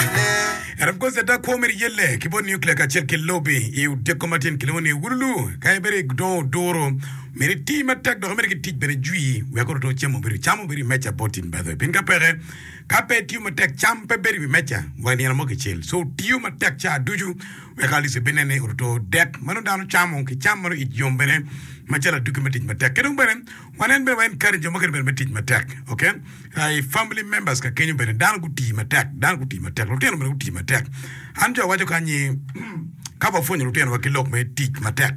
Ento apko cente akwo mere iye le ki bot nuclear kacel ki lobi i otyeko matin kilwongo ni Wululu ka en bene dongo oduro mere iti matek dok mere gitic bene jwi wek oruto ocemo obedo cam obedo i meja bot tim badho pien ka peke ka pe itiyo matek cam pe bedo i wi meja wa nino mo kicel so otiyo matek ca ducu wek Alice obed nene oruto dek ma nongo dano camo ki cam ma nongo it yom bene macalo aduki me tic matek ki dong bene Wan en bene wa en kadi jo mukene bene me tic matek ok I family members ka kenyo bene dano gu tii matek dano gu tii matek lutino bene gu tii matek an jo awaco kany ni ka wa pwonyo lutino wa ki lok me tic matek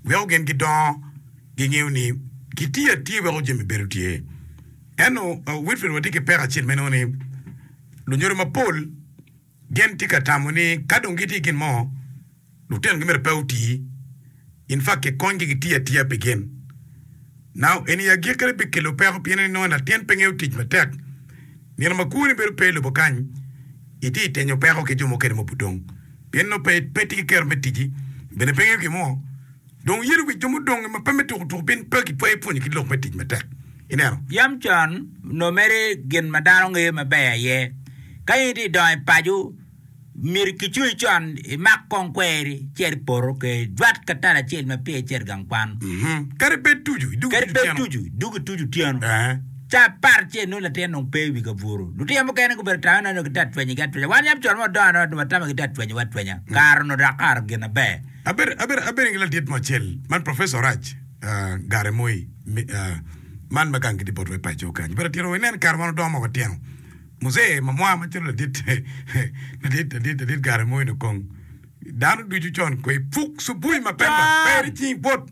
weko gin gi dongo gi ngeyo ni ki tiyo atiya weko jami bedo tye eno Wilfred wa tye ki peko acel meno ni lunyodo mapol Gin tye ka tamo ni ka dong gitye i gin mo, lutinogi myero pe oti. In fa kikonygi gitiyo atiya pi gin. Nao eni i agikkine bikelo peko pien inongo latin pe ngeyo tic matek. Nino ma kwoni bedo pe i lobo kany, itye i tenyo peko ki jo mukene ma obudong. Pienno pe itye ki kero me ticci, bene pe ingeyo gin mo. Dong yelo wic jo mudonge ma pe me tukutuku pien pe gitwayo pwonyo ki lok me tic matek. Ineno? Yam con onongo mere gin ma dano ngeyo maber aye. Ka in itye ka dongo i paco, myero kicungi con imak kong kweri ci eri i poto ka ijwat ka tal acel ma peya icito i gang kwan. Kadi bed tucu, idug Kadi bed tucu otyeno. tucu, idug ituc otyeno. Ee. Ca apar acel nongo latin dong pe i wi kabuto. Lutino mukene gubedo tame nongo gitye ka twenyogi atwenya. Wan yam con ma wadongo adonga dong watamo gitye ka twenyowa atwenya. Kare onongo dok kare gin aber. Abedo abedo ki ladit mo acel man professor Orac Gare Moi man ma gang gi tye bot wa i paco kany but atito wa inen kare wan odongo ma watino muzee ma mwa ma calo ladit ladit ladit ladit Gare Moi ni kong dano ducu con kweyo puk cubui mapema pe icing bwot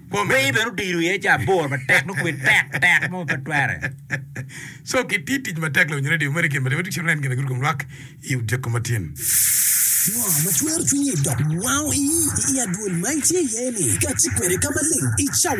Bongi bene odiro iye ca aboro matek, nongo kwir tek tek mo ma pe twere. Co gitiyo tic matek loyo nyo redi mere gin ma Timothy cito neno gin ma giruko lwak i odiko ma tin. Ngo ma twero cwinyi dok wango ii i adwol ma itye iye-ni ka ati kwede ka maleng i cawa?